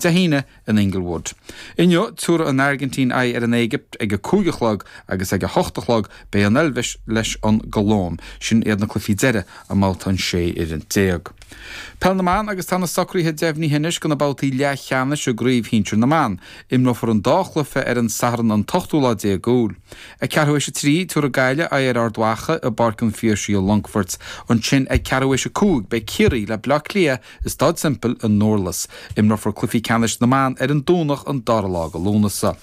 Dé hAoine in Inglewood. Inniu, tabharfaidh an Airgintín aghaidh ar an Éigipt ag a cúig a chlog agus ag a hocht a chlog beidh an Eilvéis leis an gColóim. Sin iad na cluichí deireadh i mBabhta an 16 fhoireann Peil na mBan agus tá na socruithe deimhnithe anois do na babhtaí leathcheannais i gCraobh Shinsir na mBan. Imreofar an dá chluiche ar an Satharn an t-ochtú lá déag Iúil. Ag ceathrú théis a trí, tabharfaidh Gaillimh aghaidh ar Ard Mhacha i bPáirc an Phiarsaigh i Longfort. Ansin, ag ceathrú théis a cúig, beidh Ciarraí le Bleá Cliath I Staid Semple i nDurlas, imreofar cluichí ceannais na mban ar an Domhnach an 2ú lá go Lúnasa.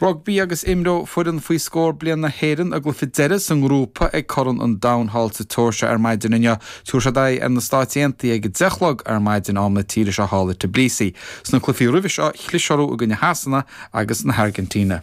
Rugbaí agus Imreoidh foireann faoi scór bliain na hÉireann a gcluiche deireadh sa ngrúpa ag Corn an Domhain thall sa tSeoirsia ar maidin inniu. Tabharfaidh siad aghaidh ar na Stáit Aontaithe ag a deich a chlog ar maidin am na tíre seo thall i Tbilisi. Sna cluichí roimhe seo, chlis orthu i gcoinne Shasana agus na hAirgintíne.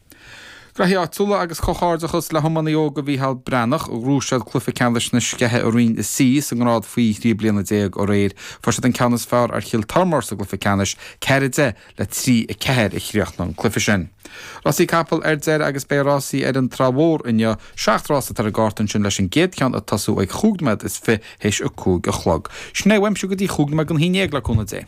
Graithí Áitiúla agus comhghairdeachas le hiománaí óga Mhícheál Breathnach. Ghnóthaigh siad cluiche ceannais na Scéithe i Roinn C sa ngrád faoi thrí bliana déag aréir. Fuair siad an ceann is fearr ar Chill Tormóir sa gcluiche ceannais, 4 10 le 3 4 a chríochnaigh an cluiche sin. Rásaí Capall ar deireadh agus beidh rásaí ar an Trá Mhór inniu. Seacht rás atá ar an gcárta ansin leis an gcéad cheann ag tosú ag chúig nóiméad is fiche théis a cúig a chlog. Sin é uaimse go dtí chúig nóiméad don haon déag le cúnamh Dé.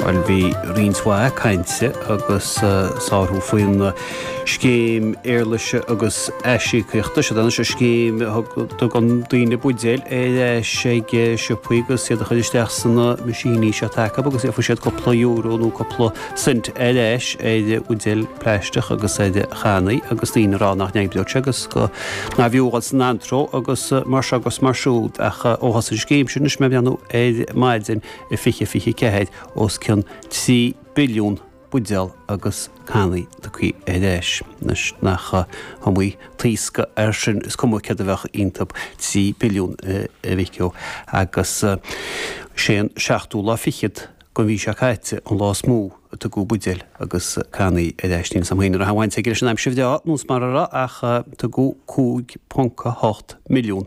Bhuel, bhí roinnt mhaith cainte agus sárú faoin Scéim Éarlaise agus Aisíocaíochta. Siod anois an scéim a dtugann daoine buidéil ar ais ag siopaí agus iad a chur isteach sna meaisíní seo atá acub agus íocfaidh siad cúpla euro nó cúpla cent ar ais ar bhuidéil plaisteach agus ar channaí agus daoine ag rá nach n-oibreodh sé agus go nárbh fhiú a dhul san antró agus mar seo agus mar siúd. Ach ó thosaigh an scéim sin anois mé ag breathnú ar maidin, i 2024 os cionn 3 billiún buidéal agus cannaí tugthaí ar ais. Anois nach iomaí taoscadh air sin, is cuma céard a bheadh iontub 3 billiún, a mhic ó, agus is é an seachtú lá fichead den mhí seo caite an lá is mó a tugadh buidéil agus cannaí ar ais. Níl a fhios agam an raibh aon bhaint aige leis an aimsir bhreá, nó is mara raibh, ach tugadh 5.8 milliún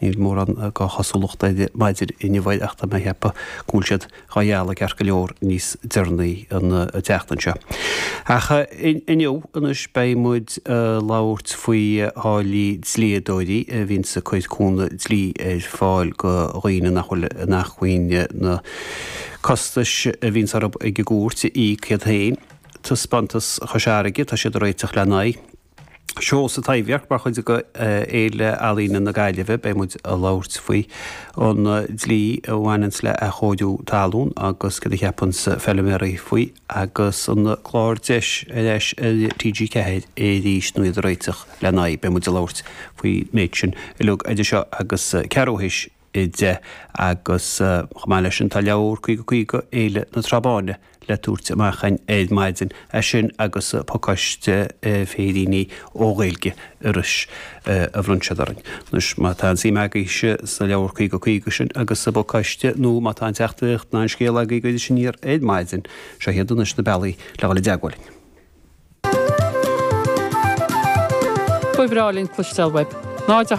Níl mórán dhá chosúlacht ar maidin inniu air ach tá mé ag ceapadh go bhfuil siad dhá ghealladh ceart go leor níos deireanaí an tseachtain seo. Ach inniu anois beidh muid ag labhairt faoi tháillí dlíodóirí a bhíonns ag cur cúnamh dlí ar fáil go dhaoine nach bhfuil in acmhainn na costais a bhíonns orthu ag an gcúirt a íoc iad féin. Taispeántas Chois Fharraige, tá siad ag réiteach lena aghaidh. Seó sa Taibhdhearc mar chuid de Fhéile Ealaíne na Gaillimhe. Beidh muid ag labhairt faoi an dlí a bhaineanns le athchóiriú talún agus céard a cheapanns feiliméaraí faoi agus an clár Deis ar Ais ar TG4 arís nó iad ag réiteach lena aghaidh. Beidh muid ag labhairt faoin méid sin uilig idir seo agus ceathrú théis. 10 agus, chomh maith leis sin, tá leabhar 50 50 Fhéile na Trá-Báine le tabhairt amach ar maidin. As sin agus pacáiste féiríní ó Ghaeilge Iorrais a bhronn siad orainn. Anois, má tá aon suim agaibhse sa leabhar 50 50 sin agus sa bpacáiste nó má tá aon teachtaireacht ná aon scéal agaibh go dtí sinn aniar ar maidin, seo iad anois na bealaí le dhul i dteagmháil linn. Ba bhreá linn cloisteáil uaibh. 0 8